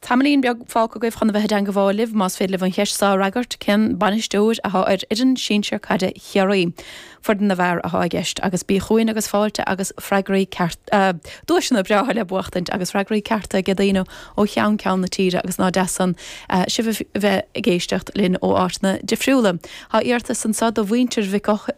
Tamaillín beag fágtha agaibh chun a bheith i dteangabháil libh más féidir libh an cheist seo a fhreagairt, cén bainisteoir atá ar fhoireann sinsir caide Chiarraí? Foireann na bhfear atá i gceist, agus bí chugainn agus fáilte agus freagraí cearta, duaiseanna breátha le buachtaint agus freagraí cearta aige daoine ó cheann ceann na tíre agus nach deas san sibh a bheith ag éisteacht linn ó áiteanna difriúla. Tá iarratas anseo do mhuintir Mhic.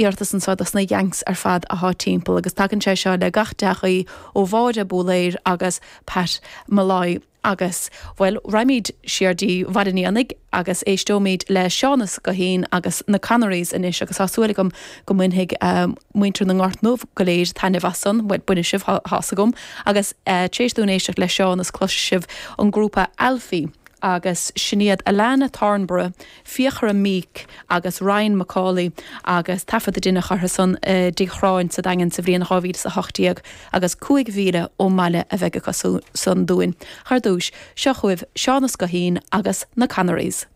iarratas anseo dos na Yanks ar fad athá timpeall agus tagann sé seo le gach dea-ghuí ó Mháire Búlaeir agus Pat Malloy agus bhuel raghaimid siar dtí Bhaile an Éanaigh agus éisteoimid le Seánas Goheen agus na Connerys anois agus tá súil agam go mbainfidh muintir na nGort nDubh go léir taitneamh as san, bhuel bainfidh sibh tá's agam agus tar éis dúinn éisteacht le Seánas cloisfidh sibh an grúpa Alfi agus sin iad Alannah Thornburgh. Fiachra Meek agus Ryan McAuley agus taifead a deineadh orthu san i dTigh Churráin sa Daingean sa bhliain 2018 agus 5 mhíle ón mbaile a bheidh acu san dúinn thar dtúis. Seo chugaibh Seánas Goheen agus na Connerys.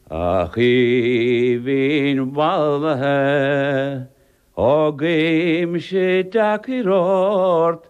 A Choimín mhallaithe, guímse deacair ort